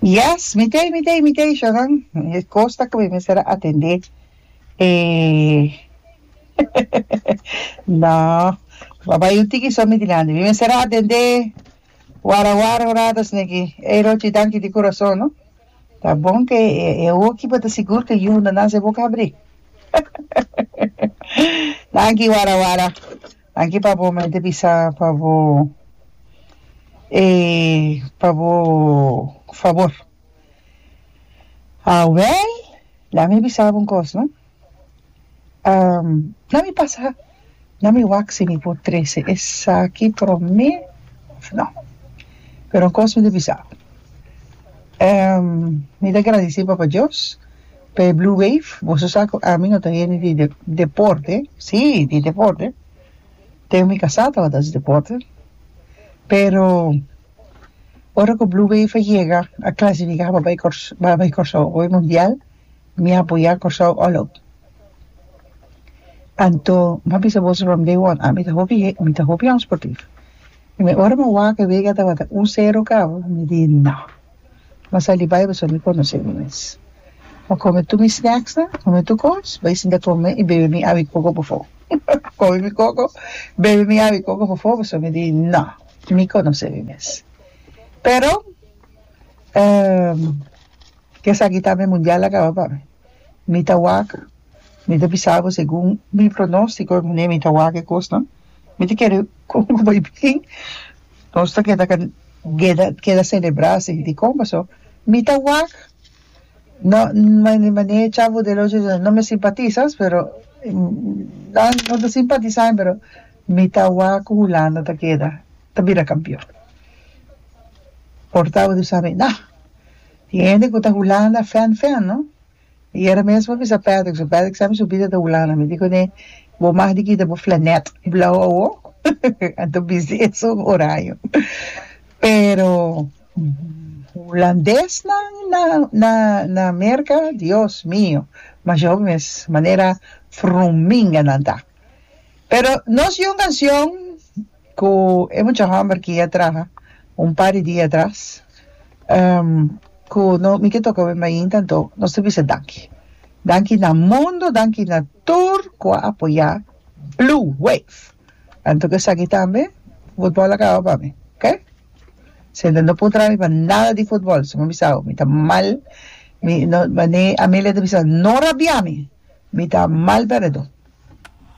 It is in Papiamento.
Yes, mi tei, mi tei, mi tei, Sharon. E kosta ku mi mester a atendé. E, no, pa bai un tiki so mi dilanti. Mi mester a atendé wara wara un rato asina aki. Ey, Rochi, danki di kurason, no. Ta bon ku e, e oki bo ta sigur ku yundanan su e boka a abrí. Danki wara wara. Aki pa bo mente bisa pa bo e pa bo fabor. Awel la mi bisa bo un kos no na mi pasa na mi wak si mi por trese esaki prome of no pero un kos mi ta bisa bo mi ta gradise papa Dios. P'e Blue Wave, boso sa cu ami no ta hende di deporte, si, di deporte, ten mi casá tabata haci deporte, pero ora cu Blue Wave a yega, a clasifica pa bay Cors, pa bay Corsou, pa bay Mundial, mi a apoyá Corsou all out. Anto, m'a bisa boso from day one, ami ta hopi hen, mi ta hopi hopi hopi sportivo. Mi ora mi wak e wega tabata un cero cabo, mi di no. M'a sali bai pasobra mi konosé mi mes. M'a kome tur mi snèksnan, kome tur kos, bai sinta kome i bebe mi awi koko pofó. Kome mi koko, bebe mi awi koko pofó pasobra mi di nò, mi konosé mi mes. Pero, ehm, ke esaki ta mi mundial a kaba pa mi. Mi ta wak, mi ta bisa bo segun mi pronóstiko, mi ta wak e kosnan, mi ta kere komo ku bai bien. Nos ta keda keda keda celebra así dikon paso mi ta wak no mane mane chavo del ocho dios no me simpatizas pero nan no ta simpatizami pero mi ta wak cu hulanda ta keda ta bira campeon por tawata mi sa nah tin hende cu ta hulanda fan fan no I era mes bo bisa Patrick so Patrick sa mi su bida ta Hulanda mi di ku ne bo mag di kita bo flanet blau awo anto bisti eso un oraño pero hulandes nan na na na Merka Dios mio mas hopi mes manera fruminga nan ta pero nos yunga cion cu e mucha homber ki a traha un par di dia atras cu no mi ke toca awe mainta anto nos ta bisa danki danki na mundo danki na tur cu a apoya blue wave anto cu esaki tambe football a caba pa mi ok sende no por traha mi pa nada di football si bo bisabo mi ta mal mi no manera Amelia ta bisa no rabia mi mi ta mal perdon.